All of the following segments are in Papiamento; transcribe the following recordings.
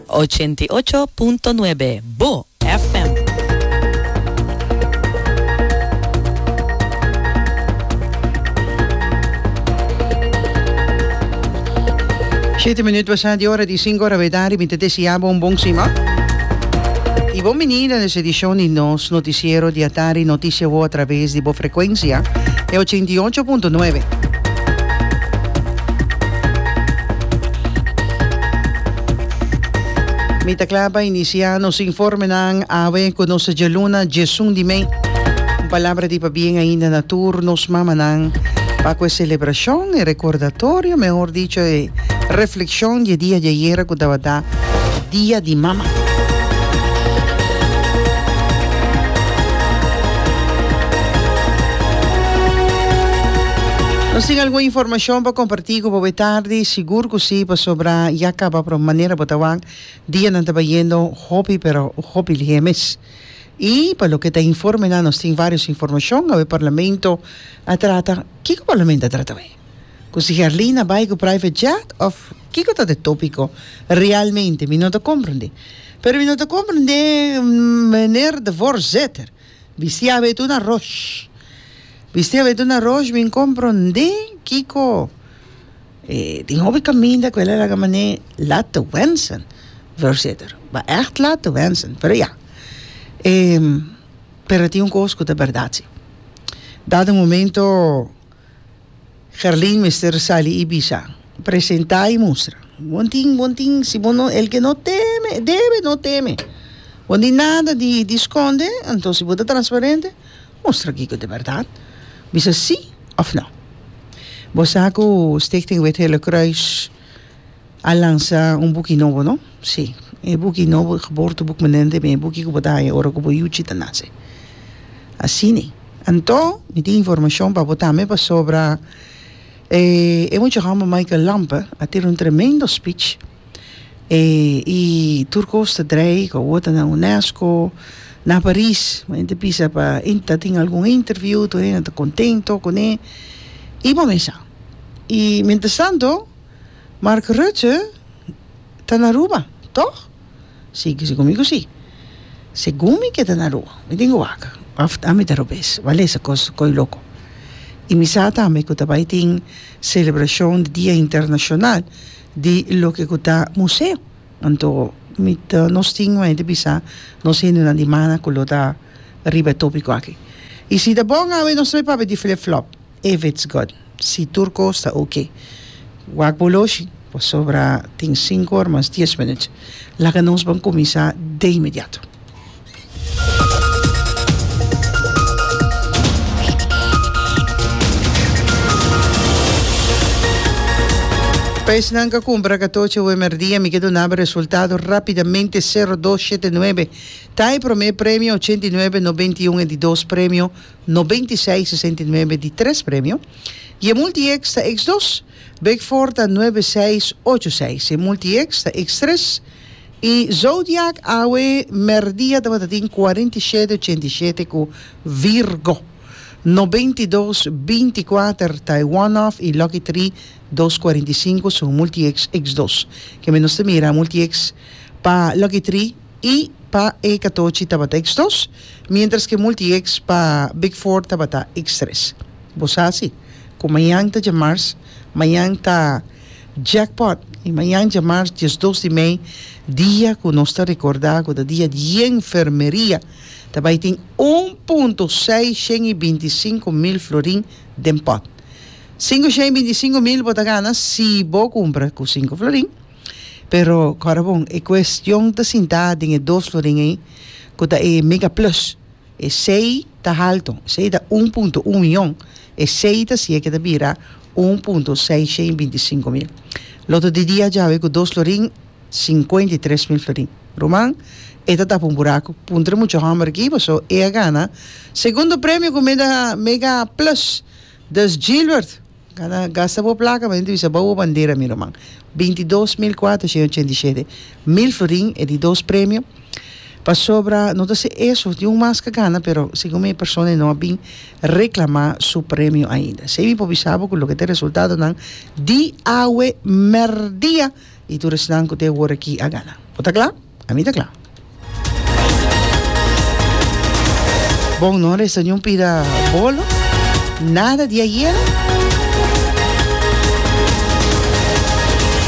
Ochenta i ocho punto nuebe, Bo FM. Shete minut basa di ora di sinku ora bedadi mi ta deseá bo un bon sima i bon bini na nos edishon di nos notisiero di atari Notisia Wou a traves di bo frekuensia e ochenta i ocho punto nuebe. Mi ta kla pa inisiá nos informenan awe ku nos ta djaluna djesun di mei. Un palabra di pabien ainda na tur nos mamanan pa ku e selebrashon, e rekordatorio, mehor dicho e reflekshon di e dia di ayera ku tabata Dia di Mama. Nos tin algun informashon pa kompartí. Si ku bo bo e tardi, sigur ku si, pasobra ya kaba prò manera bo ta wak. Dianan taba yendo hopi pero hopi lihé mes. I pa loke ta informenan, nos tin vários informashon. Awe Parlamento a trata, kiko Parlamento a trata awe? Ku si Herlin a bai ku private jet òf kiko ta e tópiko realmente? Mi no ta komprendé. Pero mi no ta komprendé meneer de voorzetter. Bisiá awe ta una ròsh. Bisté a vedu na rush bin komprondé kiko e tin hopi kaminda ku el a laga manera e laat te wensen, Voorzitter. Ba ègt laat te wensen, pero ya. E, pero tin un kos ku ta bèrdat si. Dat e momento Gerlin mester sali i bisa, presentá i mustra. Bon tin, bon tin, si bo no, el ke no teme, debe no teme. Bon tin nada di di skonde, anto si bo ta transparente, Mustra kiko ta bèrdat. Bisa sí òf nò. Bo sa ku Stichting Wit Hele Kruis a lansa un buki nobo, no? Sí. E buki nobo, Geboorteboek Menente, mi e buki ku bo ta haña ora ku bo yuchi ta nase. Asina. Anto, mi tin informashon pa bo tambe pasobra e muchahòmber Michael Lampe a tira un tremendo spich. e i tur cos ta drei cu awor ta na UNESCO na Paris mi ta bisa pa in ta tin algun interview tur hende ta contento con e i bo mesa i mientras tanto Mark Rutte ta na Aruba toch? si kisti cu mi cu si segun mi ke ta na Aruba mi tin cu wak of ami ta Arubes wak lesa cos coy loco i mi sa tambe cu ta bai tin celebracion di dia internacional di loke ku ta museo. Anto mi ta nos tin un hende bisa nos hendenan di mana ku lo ta riba e topiko aki. I si ta bon awe nos ta bay papia di flip flop if it's good. Si tur kos ta ok. Wak bo oloshi pasobra tin sinku or mas dies minut. Laga nos ban kuminsá de inmediato. Pes nan ka kumpra katoche ue merdia mi ke dunaba resultado rapidamente sero dos shete nuebe ta e prome premio ochenta i nuebe nobenta i un e di dos premio nobenta i seis sesenta i nuebe di tres premio y e multi ex ta ex dos big four ta nuebe seis ocho seis e multi ex ta ex tres I zodiak awe merdia tabata tin cuarenta y shete ochenta y shete cu Virgo, noventa y dos binti cuater ta e one off y lucky three dos cuarenta y cinco su multi ex ex dos kende nos ta mira multi ex pa lucky three y pa e catochi tabata ex dos mientras que multi ex pa big four tabata ex tres bo sa si cu mañan ta dje mars mañan ta Jackpot y mañan djamarz diesdos di mei dia cu nos ta recorda cu ta dia di enfermeria ta bay tin un punto seisciento y binticinco mil florin den pot. Cincociento y binticinco mil bo ta gana si bo cumpra cu cinco florin pero cora bon e cuestion ta sinta den e dos florin ey cu ta e mega plus. Esei ta haltu, esei ta un punto un mion, esei ta siña ke ta bira un punto seishen i binti sinku mil. Loto di dia djawe ku dos florin, sinkuenta i tres mil florin. Ruman, e ta tapa un buraku. Punta di mucha hòmber aki, paso e a gana segundo premio ku mega mega plus. Dus Gilbert! Gana gasta bo placa pa dentro bisa boubo bandera mi ruman binti dos mil cuater shende ochenta y shete mil florin e di dos premio pasobra no ta si eso tin un mas ka gana pero segun mi e persona no a bin reclama su premio ainda esei mi por bisa bo cu loke ta resultadonan di awe merdia. Di tur esnan ku ta e wor aki a gana. Bo ta kla? Ami ta kla. Bon, no resta niun pida bolo, nada di ayera.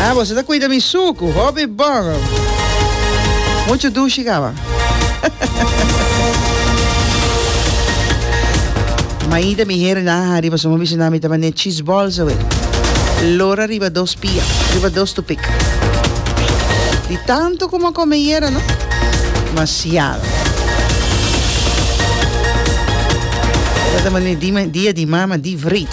Ah, boso ta kuida mi suku, hopi bon. Muchu dushi kaba. Maita mi heren, aha, riba suma bishinan mi ta bane cheese balls awe. Lora riba dos. Pia riba dos tu pik. Di tanto ku m'a kome yera no. Masiado. Tabata mane di dia di mama di vrit.